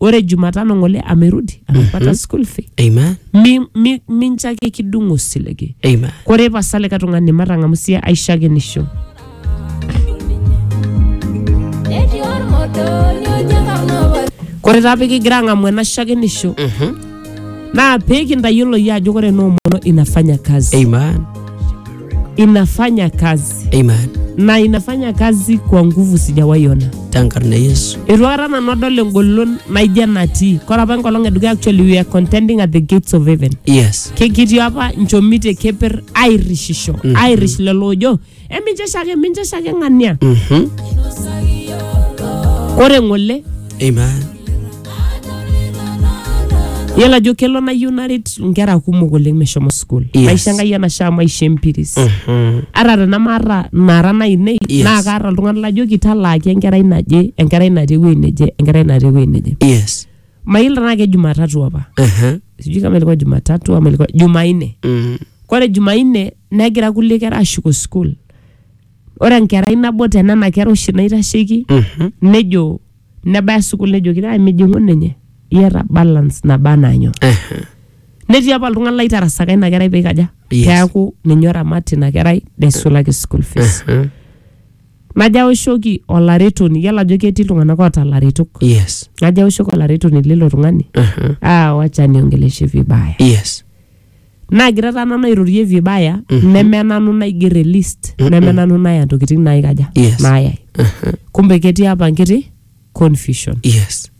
ore jumatano ng'ole amerudi anapata school fee Amen. Mi- mi- mincho ake kidung osiligi Amen. kore pasa likae tung'ani matang'amu sie aishakenisho Etii olmoto niojo enkarna obo kore taa pikigira ang'amu ena shakenisho Mhm. naa pee kintayiolo yie ajo ore ena omono inafanya kazi Amen. inafanya kazi Amen. na inafanya kazi kwa nguvu sijawaiona Tenkarna e Yesu. eitu akata nanu adol engolon naijo enatii kore apa enkolong edukuya actually we are contending at the gates of heaven Yes. Ke- kitii apa nchomitie keper airishisho mm -hmm. airish lelo ojo emincheshake mincheshake ng'ania Mhm. kore ng'ole Amen. yiolo ajo kelo nayieu naret nkera kumok oleng meshomo school Yes. maisha enkai enashaa maisha empiris Mhm. ata tenamaata nara nainei Yes. naa kaata iltung'anak lajoki talaaki enkerai naje enkerai natii ewuei neje enkerai natii ewuei neje Yes. mail tenaa ke jumatatu apa Ehe. sijui kama ilikuwa jumatatu ama ilikuwa jumanne Mm. kore jumanne negira kulie kera ashuko school ore enkerai nabo tenena kera oshi naitasheki Mhm. nejo nebaya sukul nejoki "Ai, mijing'u ninye iyata balance naba anaa nyoo Ehe. netii apa oltung'ani laitarasaka ina kerai peikaja Yes. peaku ninye oramat ina kerai neisulaki school fees Ehe. Najo aoshoki olaretoni, iyiolo ajo ketii iltung'anak oota ilaretok. yes Najo aoshoki olaretoni lilo tung'ani, Mhm. ah, wacha niongeleshe vibaya. yes Naagira taa nanu airorie vibaya, neme nanu naiger e list, neme nanu naya ntokitin naikaja, Yes. naayai. Kumbe ketii apa nkiti confusion yes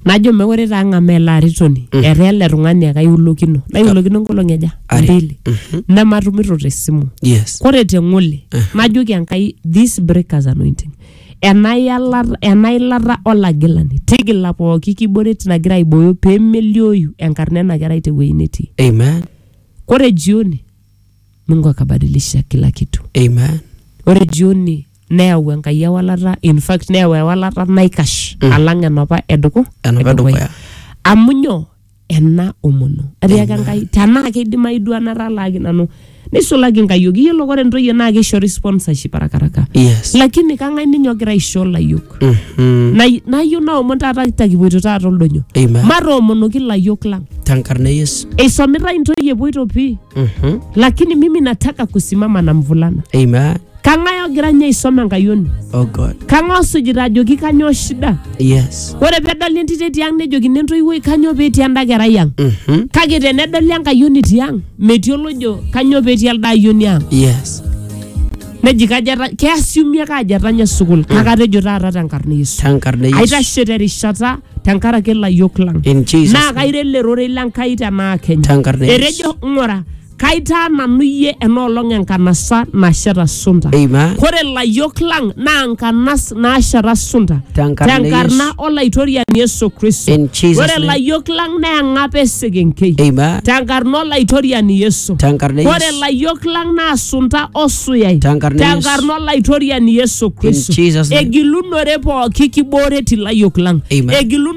najo mekure taa ng'amaa ele aritoni Mm. etaa ele tung'ani ake aiulokino naiulokino nkolong'i aja Are. mbili Mhm. nematumito tesimu yes kore te ng'ole najoki enkai this breakers anointing ena yala- ena ilata olagilani tigila pooki kiboret nagira aibooyo pee melioyu enkarna ena kerai tewueji netii amen kore jioni mungu akabadilisha kila kitu amen ore jioni neyau Enkai ewalata in fact neyau ewalata naikash alang enapa eduku Enapa edukuya. amu nyoo ena omono atiaka Enkai tenaa keidimayu duo ena talaaki nanu neisulaki nkayiok iyiolo ore ntoyie naa keishori sponsorship arakaraka Yes. lakini kang'ae ninye ogira aisho layiok Mhm. Nay- nayieu naomon taata takipuoito taata oldonyo Amen. matoomonoki layiok lang Tenkarna e Yesu. eisomitai ntoyie epuoito pii Mhm. lakini mimi nataka kusimama na mvulana Amen. kang'ae ogira ninye aisoma enkayioni Oh God. kang'ae osujita ajoki kanyoo shida Yes. ore pedoli entito etii ang nejokini entoiwuoi kanyoo petii enda kerai ang Mm-hmm. kake tenedoli enkayioni etii ang metii olojo kanyoo petii elde ayioni ang Yes. neji kajo eta- keasiumi ake ajo etanya sukul kake atejo taata tenkarna e yesu Tankarna Yesu. aitashe terishata tenkaraki ilayiok lang In Jesus. naa kairo ele rorei lenkai tenaa kenya Tankarna Yesu. etejo ng'ura Kaitaa nanu iyie enoolong enkanasa nasheta sunta. Amen. Kore layiok lang naa nkanas naasheta sunta. Tenkarna Tenkarna Yesu. Olaitoriani Yesu Kristo. In Jesus' Ore name. layiok lang naa eng'apa esekenkei. Amen. Tenkarna Olaitoriani Yesu. Tenkarna Ore Yesu. layiok lang naa sunta osuyai. Tenkarna Yesu. Tenkarna Olaitoriani Yesu Kristo. Jesus' name. Egilunore pooki kibooreti layiok lang. Amen. Egilunore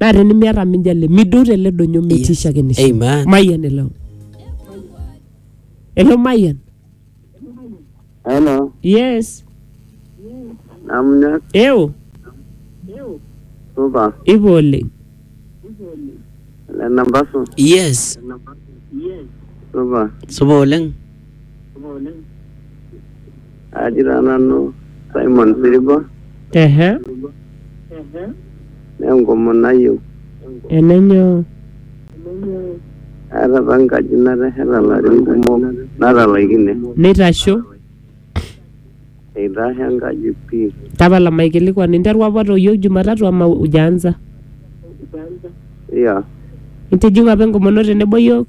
naa tenimiata minjali midou tele donyo metii Yes. shakenisho Amen. mayian elo elo mayian Hello, yes namna eo supa ipo oleng le nambasu Yes. supa Supa oleng. aji taa nanu Simon Siriba ehe naa enkomono ayieu enenyoo aata apa enkaji natesheta larin kumok natalaikine neitasho eitasho enkaji pii tapala maikilikuan interua apa toyio jumatatu ama ujaanza iya itijing'u apa enkomono tenebo yiok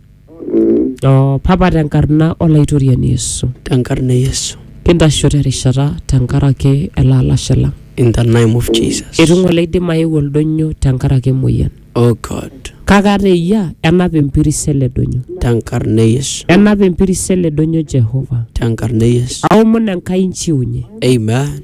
O Papa tenkarna Olaitoriani Yesu, tenkarna e Yesu, kintasho terishata tenkaraki ele alashe lang. in the name of Jesus. Eitu ng'ole eidim aeu oldonyo tenkaraki emoyian. Oh God, Kake ata eyia, enap empiris ele donyo. tenkarna e Yesu, Enap empiris ele donyo Jehova. tenkarna e Yesu. Aomon Enkai inchiunye. Amen.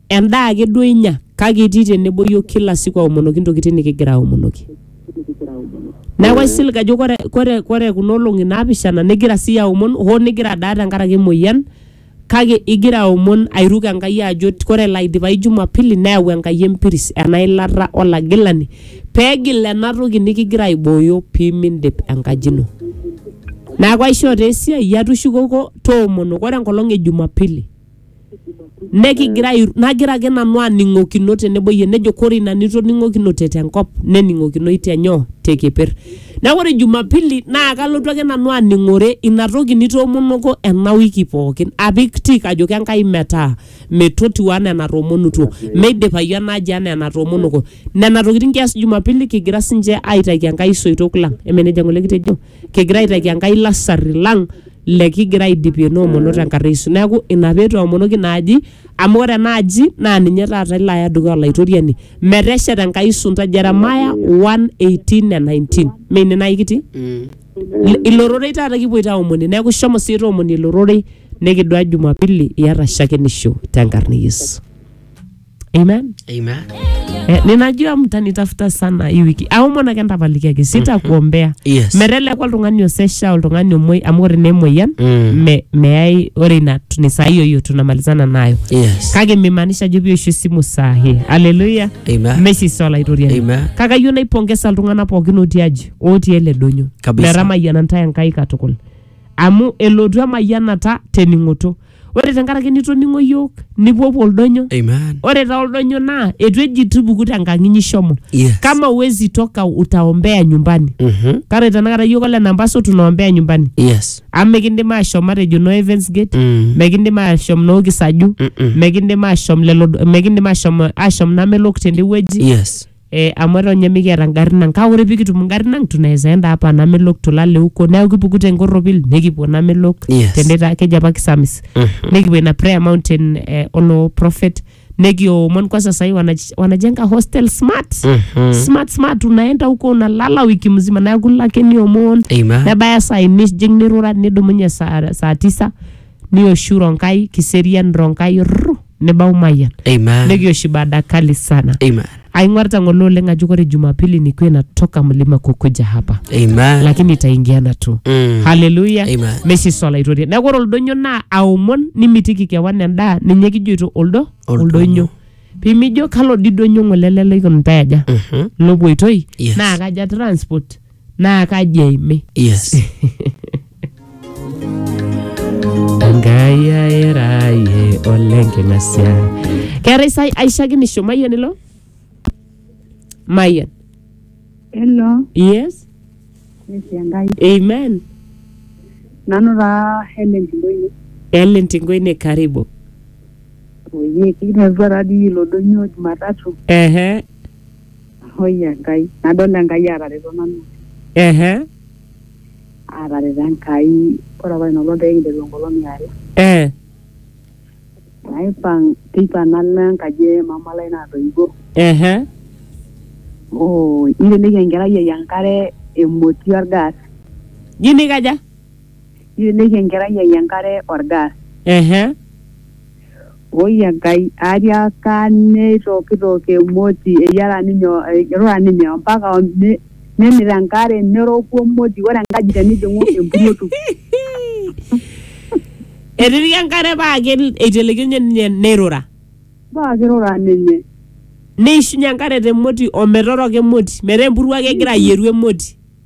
Endaa ake duo inya kake itii tenebo yiok kila siku aomonoki ntokitin nikigira aomonoki. Neeku aisilig ajo kore, kore, kore kuna olong'i naapishana nigira siyie aomon hoo nigira adaa tenkaraki emoyian kake igira aomon airuk Enkai ajo kore elo aidipayu jumapili neyau Enkai empiris ena ilata olagilani peegil ena toki nikigira aibooyo piimindip enkaji ino. Neeku aishoo taa esiai iyie atushukoko toomono kore enkolong e jumapili. nekigira ai- nagira ake nanu aning'okino tenebo iyie nejo kore ina nitoning'okinote tenkop nening'okinoi tenyoo tekeper neeku ore jumapili naa kalotu ake nanu aning'ore ina toki nitoomonoko ena wiki pookin apik tik ajoki Enkai metaa metotiu anaa enatoomonutuo meidipayu ena aji anaa enatoomonoko nena tokitin kias jumapili kigira sinche aitaki Enkai isoitok lang emenejia ng'ole kitejo. kigira aitaki Enkai lasarri lang lekigira aidipie noomono tenkarna e Yesu. Neeku ina pee itoomonoki ina aji amu ore ena aji naa ninye taata ilo aya dukuya Olaitoriani metesheta Enkai isunta Jeremiah 1:18 ne 19. Mee ine naai kitii? Ilo- Ilo rorei taata kipuoito aomonie. Neeku shomo sii toomonie ilo rorei nikidua Jumapili iyata shakenisho tenkarna e Yesu. amen Amen. eh, ninajua mtanitafuta sana hii wiki aomona kentapalikiaki sitakuombea Yes. merelekwa oltung'ani osesha oltung'ani omoi amu ore nemoyian Mm. me, meyai ore ina ni saa hiyo hiyo tunamalizana nayo Yes. kake mimaanisha ajo pioshu esimu saa hii aleluya Amen. mesisa olaitoriani Amen. kake ayieu naipongesa iltung'anak pookin otii aji otii ele donyo Kabisa. metamayiana ntae enkai katukul amu elotu emayianata tening'oto ore tenkaraki nitoning'o iyiook nipuopuo oldonyo Amen. ore taa oldonyo naa etu eji tupuku tenkang inyi shomo Yes. kama uwezi toka utaombea nyumbani Mhm. kare tenakata iyiook ole nambaso tunaombea nyumbani Yes. amu mikindim ashom matejo no Evans Gate Mm. mikindim ashom no Kisaju Mm-mm. mikindim ashom lelo mikindim ashom ashom namelok tende wueji Yes. eh, amu eton ninye mikiata ngarrin ang kake ore pikitum ngarrin ang tunaweza enda hapa namelok tulale huko neeku kipuku tenkorropil nikipuo namelok Yes. tenita keji apa kisamis nikipuo ina prayer mountain eh, olo prophet nikiomon kwanza sahii wanaj- wanajenga hostel smart smart smart unaenda huko unalala wiki mzima neeku ilo ake niomon Amen. nebaya saa ini nijing nirura nidumunye saa, saa tisa nioshu Ronkai Kiserian Ronkai rrrru, nibau Mayian Amen. nikiosh ibada kali sana Amen. aing'orita ng'ole oleng ajo kore Jumapili nikuwe natoka mlima kukuja hapa Amen. lakini itaingiana tu Mm. haleluya Amen. meshi swala aitoria neeku ore oldonyo naa aomon nimitiki kewan endaa ninye kijoito oldo Oldonyo. oldonyo pimijo kalo didonyo ng'ole lele ikunitae aja Mhm. lopoitoi Yes. naa kaja transport naa kaji eimi yes enkai airaye oleng king'asia keetae sai aishakinisho mayian ilo mayian Hello, yes Yesu Enkai. amen Nanu taa Helen Ndoyo. ellen tingoine karibu Oye, kikinetua taa dii ilo doinyio Jumatatu. ehe Hoi Enkai, nadol Enkai aatareto nanu oleng. Ehe. Aatareto Enkai, ore apa ina olong pee kinteru enkolong e are. Eh. Naipang, teipa nalo enkaji e mama lai natoiwuo. Ehe. Oo, neiteleiki enkerai ai enkare emoti olgas. Nji nikaja? Neiteleiki enkerai ai enkare olgas. Ehe. Oi Enkai, atiaaka neitokitok emoti, eyiara ninye, eirura ninye ompaka nemit enkare neroku emoti, ore enkaji tenijing'u empuruotu. Etitika enkare paa eitelekio ninye neirura. Paa keirura ninye. Neishunye enkare te moti o metoroko emoti metaa empuruo ake egira ayieru emoti.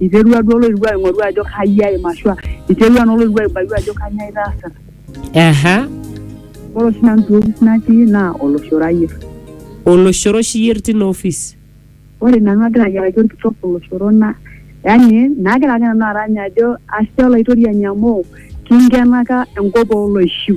iterua duo oloirua aing'oru ajo kai aim ashua iterua naa oloirua aibayu ajo kanyoo aitaasita Aha. ore oshi nanu te ofis natii naa oloshoro ayier Oloshoro oshi iyier tina office. ore nanu agira ayiaraki orkitok oloshoro na yani naagira ake nanu arany ajo ashe olaitoriani amu kinkenaka enkop oloishiu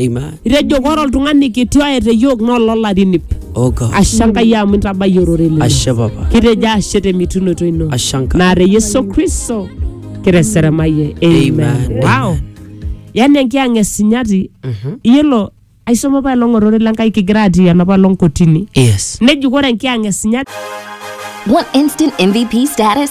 Amen. Itejo ore oltung'ani kiti oye te yiok naa ololarin ip. Oh God. Ashe Enkai amu intabayie orore lino. Ashe Papa. Kitejo ashe te mitunoto ino. Ashe Enkai. Naa te Yesu Kristo kiteseremayie. Amen. Amen. Wow. Yaani enkiyang' e sinyati. Iyiolo aisoma apa elong orore le Nkai kigira atii enapa olong kotini. Yes. Neji ore enkiyang' e sinyati. Want instant MVP status?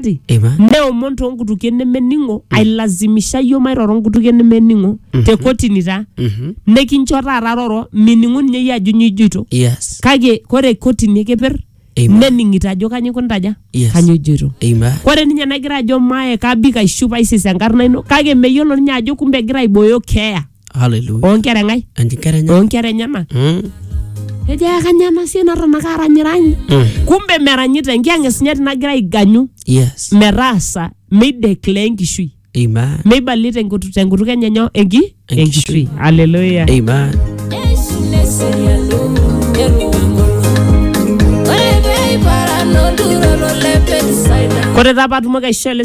Ati, Eva. neomon too nkutukie nemening'o ailazimisha iyio mairoro nkutukie nemening'o te kotini taa Mhm. nekincho taata roro mining'u ninye iyie ajo nyoo ijoito Yes. kake kore kotini ekeper Amen. nening'ito ajo kanyoo ikuntaja Yes. kanyoo ijoito Amen. kore ninye nagira ajo mae kabik aishup aisis enkarna ino kake meyiolo ninye ajo kumbe egira aibooyo keeya Hallelujah. oonkera engai Enkera enye. oonkera enyena Mm. ejo ekanyena sie natonaka aranyiranyi Mm. kumbe meranyita enkiyang'es nye tinagira aiganyu Yes. metaasa meideclare enkishui Amen. meibalie tenkutu- tenkutuk enye nyo enki Enkishui. enkishui aleluya Amen. Ore pee iparan olturoro le Betsaida. kore taa paatumoki aishoo ele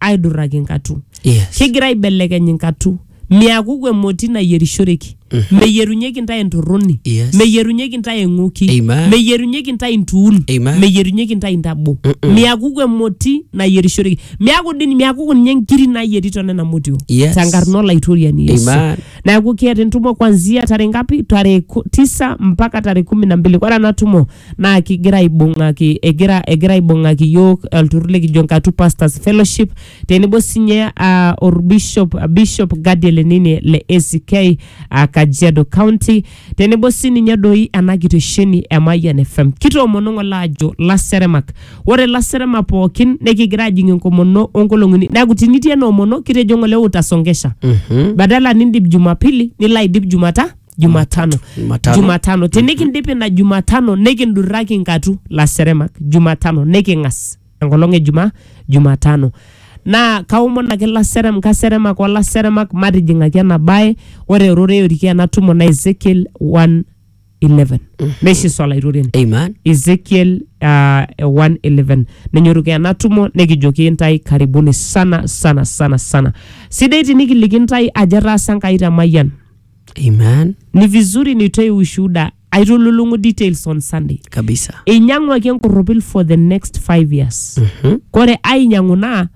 aidurraki nkatu Yes. kigira aibelekeny inkatu miakuku emoti nayierishoreki meyierunyeki intae entorroni Yes. meyierunyeki intae eng'oki Amen. meyierunyeki intae intuun Amen. meyierunyeki intae intabo miakuku emoti nayierishoreki miaku dini miakuku ninye nkiri nayieri tonena motio Yes. tenkarna olaitoriani yesu Amen. neaku keeta entumo kwanzia tarehe ngapi tarehe ku- tisa mpaka tarehe kumi na mbili ore ena tumo naa kigira aibung'aki egira egira aibung'aki iyiook olturrur likijo Nkatu Pastors Fellowship tenebo sinye ah, orbishop Bishop Gadiel Enini le ACK ah, Kajiado County tenebo sininye doi ena kitesheni e Mayian FM. Kitoomono ng'ole aajo laseremak. Ore laseremak pookin nekigira ajing enkomono onkolong'i uni. Neeku tinitii ena omono kitejo ng'ole utasongesha. Badala nindip Jumapili nilo aidip Jumata jumatano Jumatano. jumatano tinikindipi ina jumatano nikindurraki inkatu laseremak jumatano niking'as enkolong e jumaa jumatano naa kaomon ake laserem kaseremak olaseremak matijing'aki ena bae ore erorei oriki ena tumo na ezekiel 111 meshiso olaitoriani Amen. ezekiel uh, 111 nenyoruka ena tumo nikijoki intae karibuni sana sana sana sana sidai tinikiliki intae ajo etaasa enkai te mayian Amen. ni vizuri nitoe ushuhuda aitululung'u details on sunday Kabisa. einyang'uaki enkorropil for the next five years Mhm. kore ainyang'u naa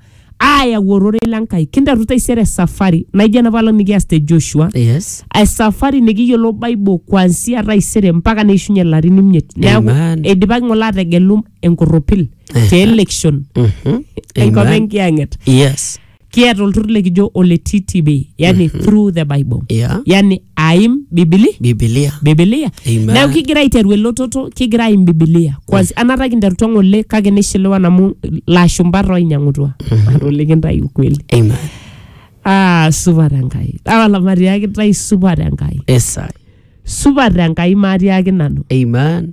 aayau ororei le nkai kinteru taisere safari naijo enapalang nikias te joshua Yes. esafari nikiyiolo bible kuansia taisere mpaka neishunye larin imiet neaku Amen. eidipaki ng'ole ategelu enkorropil te election Mhm. enkop Amen. enkiyang'et Yes. kiata olturur likijo ole ttb yani through the bible Yeah. yani aim bibili bibilia bibilia Amen. neeku kigira aiteru elototo kigira aim bibilia kwansi anata kinterutua ng'ole kake nishiliwa namu lashumba toinyang'utua atole kintai ukweli amen ah, supat enkai awala matiaki tai supat enkai esai supat enkai matiaki nanu amen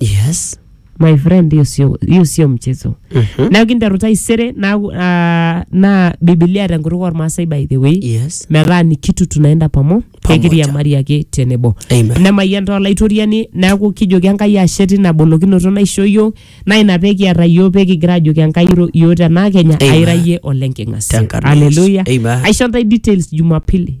yes my friend hiyo sio hiyo sio mchezo Mhm. neaku kinteru taisere naaku ah, naa bibilia tenkutuk ormaasai by the way yes metaa ni kitu tunaenda pamo Pamoja. pekiriamari ake tenebo Amen. nemayian taa olaitoriani neaku kijoki enkai ashe tina bolokinoto naisho yiok naa ina pekiata yiok pekigira ajoki enkai iro yiok tenaa kenya Amen. aira yie olenking'asia Tenkarna Yesu. Hallelujah. Amen. aisho ntae details jumapili